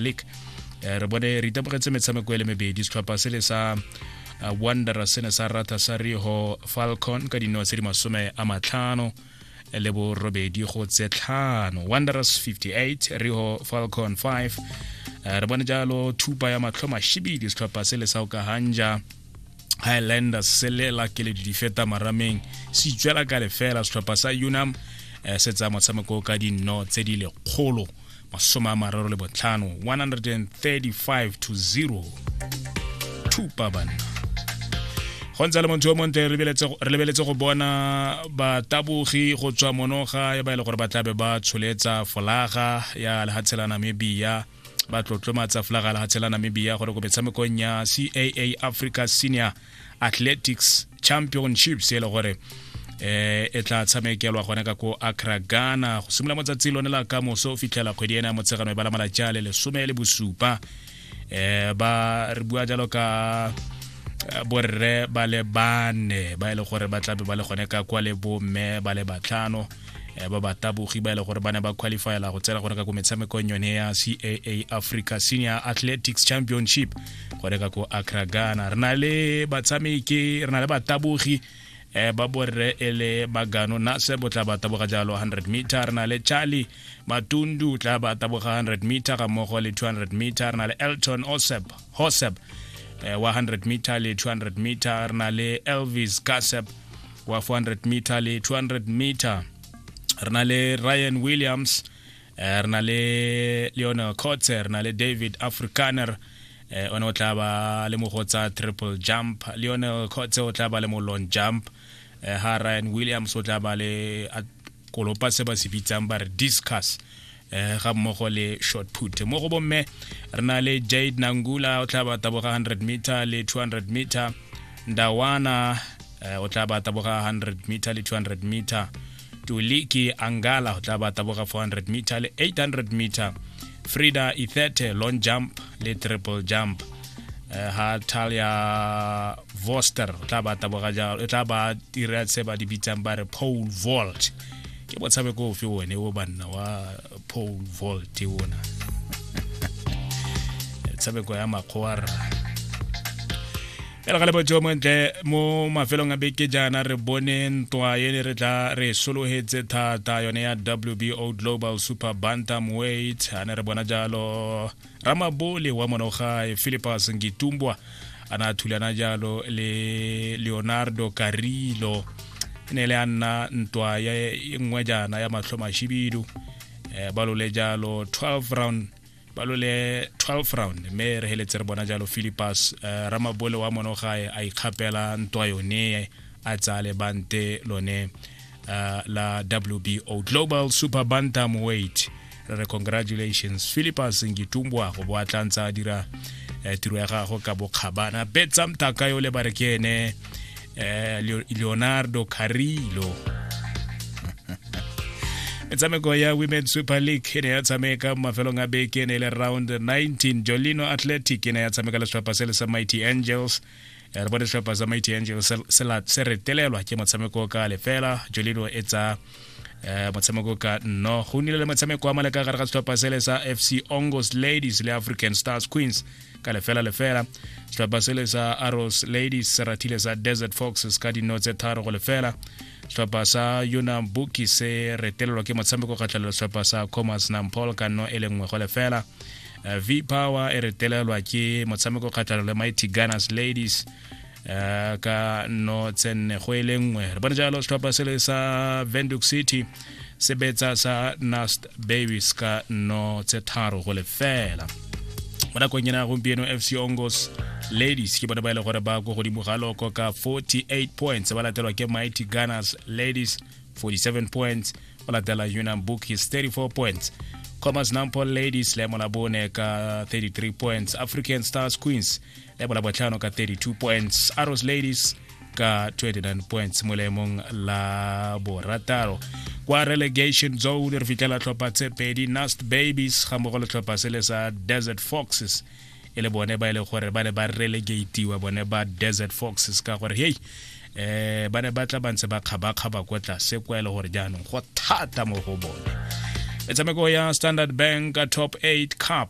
league eh, re bone re itemogetse metshameko e le mebedi setlhopha se le sa eh, wondera se ne sa rata sa riho falcon ka dino tse di masome a matlhano eh, le borobedi go tse tlhano wonders 58 riho falcon 5 re bone jalo thupa ya matlho mashibidi setlhopha se le sa okahanja highlanders se lela keledi di feta marameng se itswela ka lefela setlhopha sa unam eh, se tsaya motshameko ka dinno tse di lekgolo masome a mararo le botlhano 135 to 0 thupa banna go ntse le motho yo montle re lebeletse go bona batabogi go tswa monoga ya ba e le gore ba tlabe ba tsholetsa folaga ya lehatshe la namibia ba tlotlomatsa folaga ya lehatshe la namibia gore ko metshamekong ya caa africa senior athletics championships e le gore eh e tla tshamekelwa gone ka ko Accra Ghana go simolola motsatsi lone la ka moso o fitlhela kgwedi ena motshegano e bala malatsi a le lesome le bosupa eh ba re bua jalo ka eh, borre ba le bane ba e le gore ba tlabe ba le gone ka kwa le bomme ba le batlhano eh, ba batabogi ba e le gore ba ne ba qualifyela go tsena gone ka ko metshamekong yone ya caa africa senior athletics championship go reka ko acra ghana re na le batshameki re na le batabogi eh, ba borre e le bagano nase bo tla ba taboga jalo 100 meter re na le charlie matundu tla ba taboga 100 meter ga mmogo le 200 meter re na le elton osep hosep eh, wa 100 meter le 200 meter re na le elvis kasep wa 400 meter le 200 meter re na le ryan williams eh, re na le leonel cots re na le david africaner eh one o tla ba le mo go tsa triple jump Lionel Khotse o tla ba le mo long jump eh ha Ryan Williams o tla ba le a kolopa se ba se bitsang ba re discuss eh ga mmogo le short put mo go bomme re na le Jade Nangula o tla ba taboga 100 meter le 200 meter Ndawana eh, o tla ba taboga 100 meter le 200 meter tuli ke angala go tla ba taboga 400 meter le 800 meter frida ithete long jump le triple jump eh, ha talia voster o tla ba taboga jalo e tla ba dira se ba di bitsang ba re pole vault ke botshabe ko ofe one o banna wa pole vault ona tshabeko ya makgwarra e re ga lebotso montle mo mafelong a beke jaana re bone ntwa e ne re tla re sologetse thata yone ya wbo global super bantam weight a ne re bona jalo ramabole wa monogae philipus ngitumbwa a na thulana jalo le leonardo carilo e ne le a nna ntwa ya e nngwe jaana ya matlho mashibidu um eh, ba lole jalo 12 round palo le 12 round mme re heletse re bona jalo philippus uh, eh, ramabole wa monogae a ikgapela ntwa yone a tsaya lebante lone uh, la wbo global super bantam weight re re congratulations philippus ngitumbwa go bo a tla ntse a dira uh, tiro ya gago ka bokgabana betsa mtaka yo le ba re ke ene eh, leonardo carrillo metshameko ya women super league e ne ya tshameka mo mafelong a beke e ne e le round 19 jolino athletic e ne ya tshameka le setlhopha se le sa mighty angels eh, re bone setlhopha sa mighty angels se retelelwa ke motshameko ka lefela jolino e tsa eh, motshameko ka nno go nnile le motshameko wa maleka gare ga setlhopha sele sa fc ongos ladies le african stars queens ka lefela lefela setlhopha sele sa arrows ladies se rathile sa desert foxes ka dino tse tharo go lefela setlhopha sa yona buki se retelelwa ke motshameko kgatlhelo setlhopha sa comas nampol ka nno e le nngwe go lefela eh, v power e retelelwa ke motshameko kgatlhelo le mighty gunners ladies um ka no tsenne go e le nngwe re bone jalo setlhopha se le sa venduk city se betsa sa nast babies ka no tse tharo go lefela mo nakong ena gompieno fc ongos ladies ke bone ba e le gore ba ko godimo ga loko ka 48 points ba latelwa ke mighty gunners ladies 47 points ba latela unam bookies 34 points commerce nampol ladies le molabone ka 33 points african stars queens le bolabotlhano ka 32 points arrows ladies ka 29 points mo leemong la borataro kwa relegation zone re fitlhela tlhopha tse pedi nast babies ga mmogo le tlhopha se le sa desert foxes e le bone ba e le gore ba ne ba relegatiwa bone ba desert foxes ka gore hei eh ba ne ba tla ba ntse ba kgabakgaba kwa tlase kwa e le gore jaanong go thata mo go bone metshameko ya standard bank top 8 cup